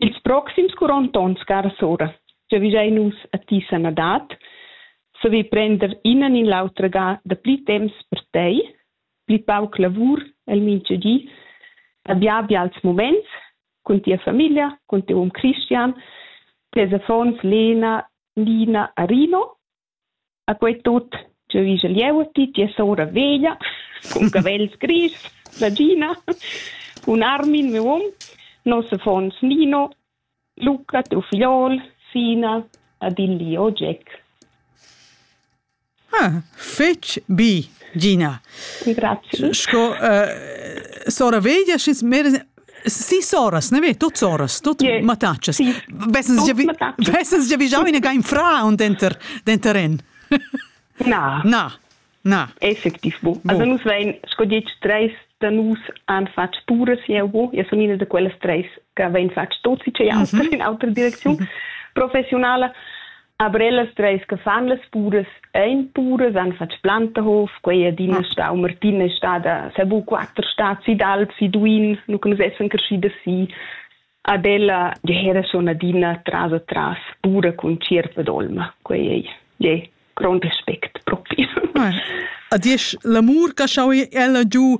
Ils proxims quarant onns, cara sora, giavischein nus a ti sanadad, saver prender ina ni l'autra ga dapli temps per tei, pli pauc lavur el mintga di, abia bials muments cun tia famiglia, cun tiu um Christian, tes affons Lena, Nina, Arino A quei tut jeu igl jeu ti tia sora veglia cun cavels grischs, ragina, cun Armin, miu um, nos affons Nino, Luca, tiu figliol, Sina ed il Lio Jack. Ah, fetg bi, Gina. Grazie. Sco uh, sora veglia, sch'ins Sis oras, ne ve, tuts oras, tut yeah. mattatschas. Sì. Vessens già vigiau ina gain fra und denter denter en. Na. Na. Na. Effektiv bo. Also nus vein sco ditg treis da nus han fatg puras jeu bo. Ja sun ina da quellas treis che vein fatg tot si che autra mhm. in autra direcziun mhm. professionala. Aber ellas treis che fan las puras ein puras, han fatg Plantahof, quei adina stau, Martina è stada, sa bu quatter stat si d'alp, si Duin, nu che nus essan crescidas si. Ad ella era schon adina tras a tras pura cun tschierpa d'olma, quei ei je grond aspect propi. Ah, a diesch l'amur che schau ella giu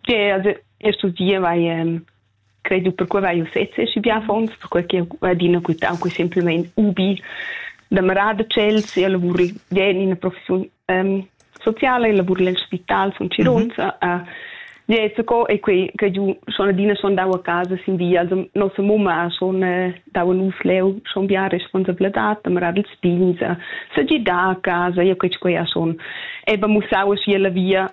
che also e studiava e credo per quei vai u sezze schi bien fons per quei che va adina quitau qui semplicemente ubi da marada chels e lavori gen in professiun um, sociale e lavori nel spital son Cironza mm -hmm. uh, ja so co e quei che giu schon adina schon dau a casa sin via also nossa mumma schon uh, dau nus leu schon bien responsabilità da marada els pigns uh, se gi da a casa e quei quei schon e ba musau a la via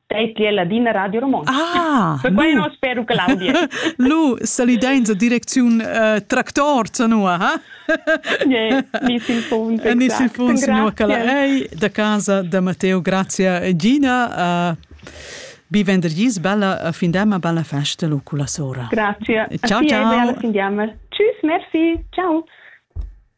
Teitli è ladina Radio Romontsch. Ah, Perquai nu spero che l'audio. lu salidein sa direcziun uh, tractor zanua, ha? yeah, Nissin Funs. Nissin Funs, nua che ei da casa da Matteo, grazie Gina. Uh, bi vendergis, bella fin demma, bella festa lu con la sora. Grazie. Ciao, ciao. Alla fin demma. Tschüss, merci. Ciao.